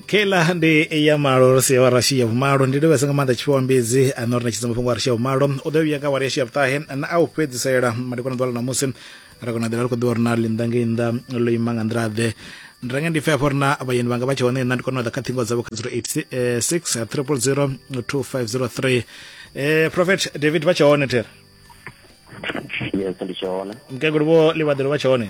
kela ndi ya malo ro sia wa rashi ya vhumalo ndi livhesa nga maanḓa tshifhiwa mbidzi a no ri ṋetshedza mafhungo a rashi ya vhumalo u ḓo vhuya nga wari yashi ya vhuṱahe na a u fhedzisela madekwana ḓuvha ḽa ṋamusi ra kona ḓela ri khou ḓivha uri na ḽi nnḓa ngei nnḓa ḽo ima nga nḓila ḓe ndi renge ndi pfe afho ri na vhayeni vhanga vha tshe hone nna ndi kona u ḓa kha ṱhingo dzavho kha 086 triple 0 2503 eh prophet david vha tshe hone thera yes ndi tshe hone mukegulu vho livhaḓelo vha tshe hone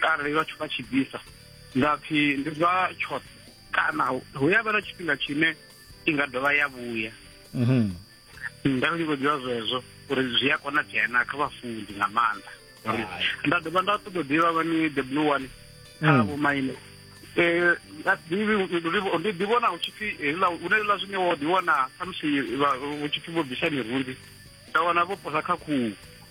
arali vhathu vha tshi bvisa nga pfhi ndi zwa tshoṱhe kana hu ya vha na tshifhinga tshine i nga dovha ya vhuya mhm. nda ndi khou ḓivha zwezwo uri zwi a konadzea na kha vhafunzi nga maanḓa nda dovha nda ṱoḓa ḓivha vhani the blue one kha mm. vhomaine Eh, ndi ḓivhona hu tshipfi hune ḽa zwine wo ḓiwana khamusi hu tshipfi vho bvisa mirunzi nda wana vho posa kha khuhu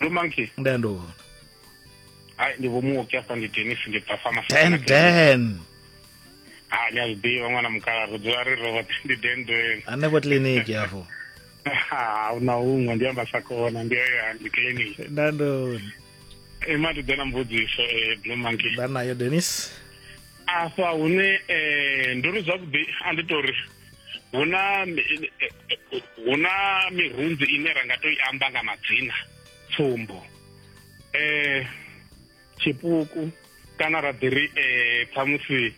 ndo monkey nda ndo vona hai ndi vho muoki afha ndi denis ndi bva pharmacy dan dan ha ni a zwi ḓivha ṅwana mukala ri dzula ri robote ndi dan dan hanefho kiliniki afho ha una huṅwe ndi amba sa kona ndi ya ndi kiliniki nda ndo ima ndi ḓe na mbudziso eh, blue monkey nda nayo denis afha hune um ndo ri zwavhuḓi a ndi tori hu na hu na mirunzi ine ra nga to i amba nga madzina tsumbo eh tshipuku kana ra ḓi ri eh ṱhamusi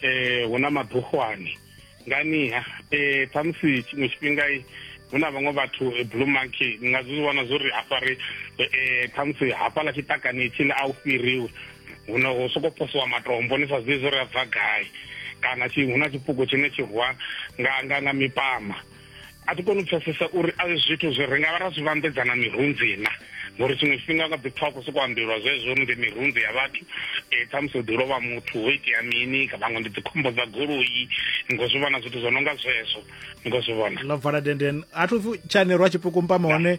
eh hu na maḓuhwani nganiha eh ṱhamusi tshiṅwe tshifhinga hu na vhaṅwe vhathu eh, blue monkey ni nga zwi vhona zwo ri hafha ri um khamusi hafhaḽa tshiṱakani tshile a u fhiriwe huno hu soko posiwa matombo ni sa zwiḓi zwo ri a bva gai kana hu na tshipuku tshine tshi rwa nga nga nga mipama a thi koni u pfesesa uri a zwithu zwi ri nga vha ra zwi vhambedzana mirunzi na ngori tshiṅwe tshifhinga nga ḓi pfha ku soko ambelwa zwezwo uri ndi mirunzi ya vhathu um ṱhamusi hu ḓi lovha muthu ho itea mini vhaṅwe ndi dzikhombo dza goloi ni khou zwi vhona zwithu zwo no nga zwezwo ni khou zwi vhona ḽo vala denden a thu pfi tshanerwa tshipuku mpama hone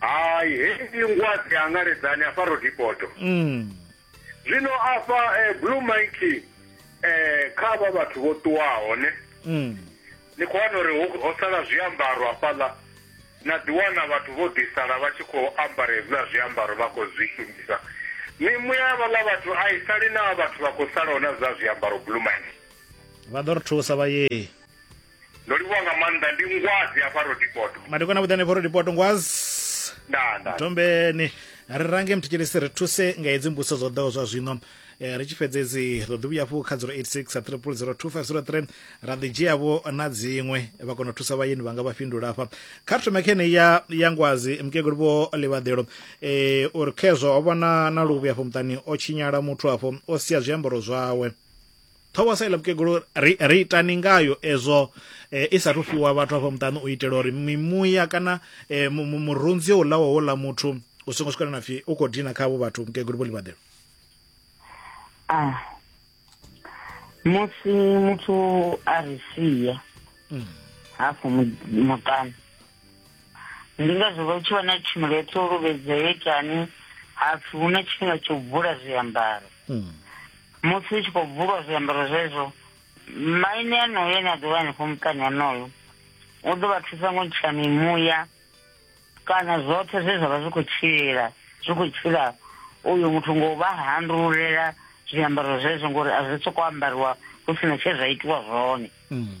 hai hei ngwadzi angaredzani afha rodipoto mm. zwino afha eh, blue mike eh, kha vha vhathu vho ṱuwaho ne mm. ni khou wana uri ho sala zwiambaro afhaḽa na ḓiwana vhathu vho ḓisala vha tshi khou ambara hezwiḽa zwiambaro vha khou zwi shumisa mimuya ya vhaḽa vhathu a i sali na vhathu vha khou salaho na zwa zwiambaro blue mike vha ḓo ri thusa vha yee ndo livhuwa nga maanḓa ndi ngwazi hafha rodipoto madekwana vhuḓane fha rodipoto ngwazi ndaa ndaa tombeni ri range mthetshelesi ri thuse nga hedzi mbuso zwo ḓaho zwa zwino Eh, ri tshi fhedza edzi ro ḓi vhuya hafhu kha 086 a triple 02503 ra ḓi dzhiavho na dziṅwe vha kona u thusa vhayeni vhanga vha fhindula hafha kha ri thome khene ya ya ngwazi mukegulu vho livhaḓelo eh, uri khezwo ho vha na na luvhi hafho muṱani o tshinyala muthu hafho o sia zwiambaro zwawe ṱhoho sa iḽa mukegulu ri ri itani ngayo ezwo eh, i sa thu fhiwa vhathu afho muṱani u itela uri mimuya kana eh, mu- mu- murunzi o ulaho wo ḽa muthu u songo swikela na pfhi u khou dina kha avho vhathu mukegulu vho ḽivhaḓelo ah musi muthu a ri sia hafho mu- muṱani ndi ngazwo vha tshi wana tshumelo ya ṱolobedza yo itani hapfi hu na tshifhinga tsho bvula zwiambaro hmm. musi hu tshi khou bvulwa zwiambaro zwezwo maine anoyo ane a ḓovha hanefho muṱani anoyo u ḓo vha thusa ngo ntsha mimuya kana zwoṱhe zwe zwa vha zwi khou tshila zwi khou tshila uyu muthu ngo vha handululela zwiambaro zwezwo ngori a zwi soko ambariwa hu sina tshe zwa itiwa zwone mm.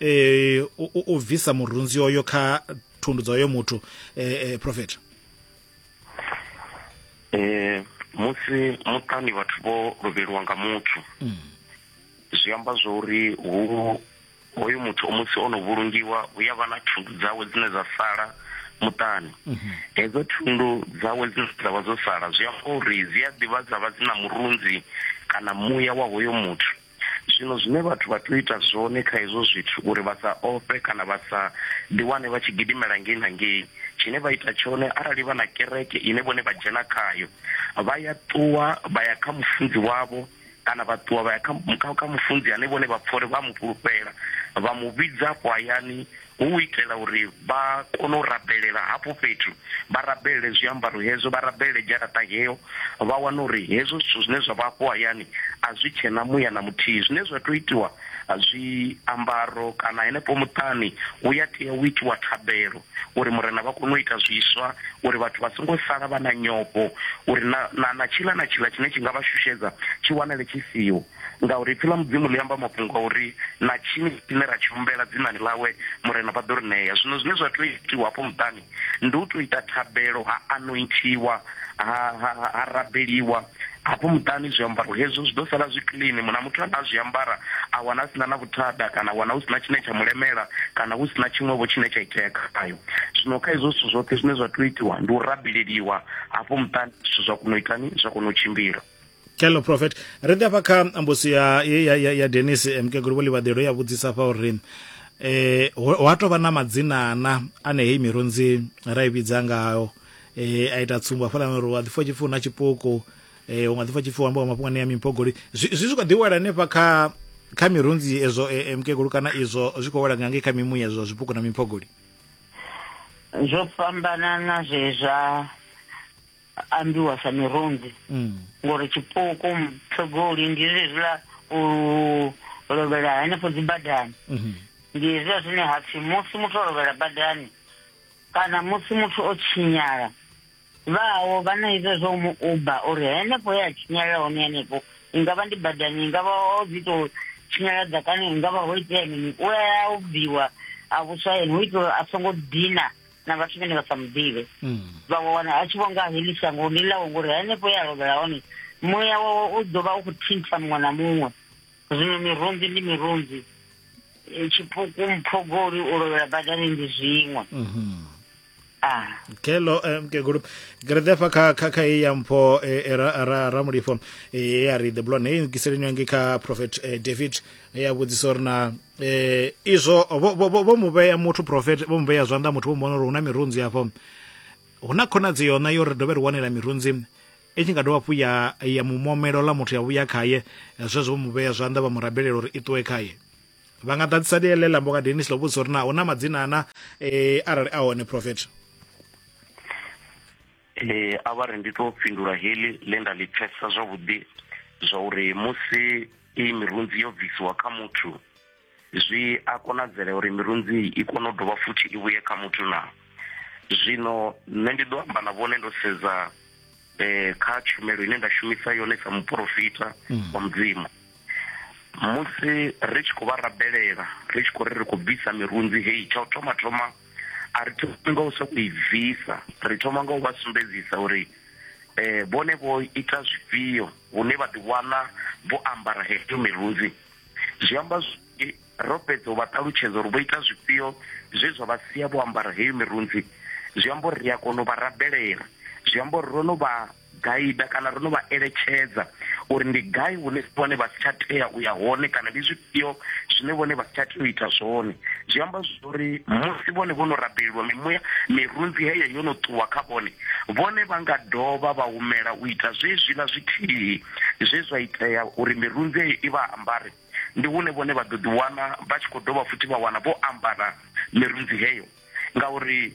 eh u, u, u bvisa murunzi oyo kha thundu dza oyo muthu eh, eh profeta eh musi muṱani vhathu vho lovheliwa nga muthu mm. zwi amba zwo uri hu hoyu muthu musi o no vhulungiwa hu ya vha na thundu dzawe dzine dza sala muṱani mhm. hedzo thundu dzawe dzine dza vha dzo sala zwi amba uri dzi a ḓivha dza vha dzi na murunzi kana muya wa hoyo muthu zwino zwine vhathu vha tea u ita zwone kha hezwo zwithu uri vha sa ofhe kana vha sa ḓiwane vha tshi gidimela ngei na ngei tshine vha ita tshone arali vha na kereke ine vhone vha dzhena khayo vha ya ṱuwa vha ya kha mufunzi wavho kana vha ṱuwa vha ya kha mufunzi ane vhone vha pfha uri vha mu fhulufhela vha mu vhidza afho hayani hu u itela uri vha kone u rabelela hafho fhethu, vha rabelele zwiambaro hezwo, vha rabelele dzharaṱa heyo, vha wane uri hezwo zwithu zwine zwa vha afho hayani a zwi tshe na muya na muthihi. Zwine zwa tea u itiwa, zwiambaro kana henefho muṱani hu ya tea u itiwa thabelo uri Murena vha kone u ita zwiswa, uri vhathu vha songo sala vha na nyofho, uri na, na, na tshiḽa na tshiḽa tshine tshi nga vha shushedza tshi wanale tshi siho. Ngauri ipfi ḽa Mudzimu ḽi amba mafhungo a uri na tshini tshine ra tshi humbela dzinani ḽawe, Murena vha ḓo ri ṋea. Zwino zwine zwa tea u itiwa hafho muṱani ndi u tou ita thabelo, ha anointhiwa, ha, ha, ha, ha rabeliwa hafho muṱani, zwiambaro hezwo zwi ḓo sala zwi clean. Muṅwe na muthu ane a zwi ambara a wana a si na na vhuthada, kana a wana hu si na tshine tsha mu lemela, kana hu si na tshiṅwevho tshine tsha itea khayo. Zwino kha hezwo zwithu zwoṱhe zwine zwa tea u itiwa ndi u rabeleliwa hafho muṱani, zwithu zwa kona u itani? Zwa kona u tshimbila. kello prophet ri ḓe afha kha mbusi ya, ya, ya, ya denis eh, mukegulu vho livhaḓelo ya vhudzisa fha uri eh ho a tou vha na madzina ana ane heyi mirunzi ra i vhidza ngayo eh a ita tsumbo hafhaḽa uri wa ḓifha tshipfi na tshipuku eh u nga ḓifha tshipfi wamba wa mafhungo ane ya mimpogoli zwi zwi zwi kho ḓi wela hanefha kha kha mirunzi ezwo eh, eh, mukegulu kana izwo zwi khou wela nga ngei kha mimuya ezwo zwipuku na mimpogoli zwo fhambanana zwezwa ambiwa sa mirunzi mm. ngori tshipuku mthogoli ndi zwezwiḽa u lovhela henefho dzi badani mhm. ndi hezwiḽa zwine ha pfhi musi muthu o lovhela badani kana musi muthu o tshinyala vhawo vha na izwo zwo mu uba uri henefho ye a tshinyala hone henefho i nga vha ndi badani i nga vha o dzi tou tshinyala ḓakani i nga vha ho itea mini u a ubviwa a vhuswa yene hu itela uri a songo dina na vhathu vhene vha sa muḓivhe mm. vha wana a tshi vho nga heḽi shango ndi ḽawo ngori henefho ya lovhela hone muya wawe u ḓo vha u khou thintha muṅwe na muṅwe zwino mirunzi ndi mirunzi e, tshipuku mphogoli u lovhela badani ndi zwiṅwe mhm. ah. kelo eh, mkegulu gre defa kha kha kha ya mpho eh, eh, ra ra ra mulifo ya ri the blonde hey ngiseleni ngi kha prophet david ya vhudzisa uri na eh izwo vho mu vhea muthu profet vho mu vhea zwanḓa muthu vho mu vhona uri huna mirunzi hafho huna khonadzi yona yo ri dovhe ri wanela mirunzi i tshi nga dovha hafhu ya ya mumomelo ḽa muthu ya vhuya khaye zwezwo vho mu vhea zwanḓa vha mu rabelela uri i ṱuwe khaye vha nga ḓadzisa ḽiele ḽa mboka denis ḽo vhudzisa uri na huna madzina ana um arali a hone profet Ee, a vha ri ndi tou fhindula heḽi ḽe nda ḽi pfesesa zwavhuḓi zwa uri musi iyi mirunzi yo bvisiwa kha muthu zwi a konadzela uri mirunzi i kone u dovha futhi i vhuye kha muthu na zwino nṋe ndi ḓo amba na vhone ndo sedza eh, kha tshumelo ine nda shumisa yone sa muporofita mm. wa mudzimu musi ri tshi khou vha rabelela ri tshi khou ri ri khou bvisa mirunzi heyi tsha u thoma thoma mm. a ri thomi nga u sokou i bvisa ri thoma nga u vha sumbedzisa uri eh vhone vho ita zwifhio hune vha ḓiwana vho ambara heyo mirunzi zwi amba ro fhedza u vha ṱalutshedza uri vho ita zwifhio zwe zwa vha sia vho ambara heyo mirunzi zwi amba uri ri a kona u vha rabelela zwi amba uri ro no vha gaida kana ro no vha eletshedza uri ndi gai hune vhone vha si tsha tea u ya hone kana ndi zwifhio zwine vhone vha si tsha tea u ita zwone zwi amba zwori musi vhone vho no rabelelwa mimuya mirunzi heyo yo no ṱuwa kha vhone vhone vha nga dovha vha humela u ita zwezwiḽa zwithihi zwe zwa itea uri mirunzi heyo i vha ambare ndi hune vhone vha ḓo ḓiwana vha tshi khou dovha futhi vha wana vho ambara mirunzi heyo ngauri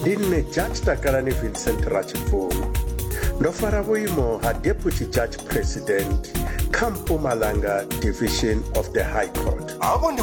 ndi nṋe judge takalani vincent ratshibvuma ndo fara vhuimo ha deputy judge president kha mpumalanga division of the high court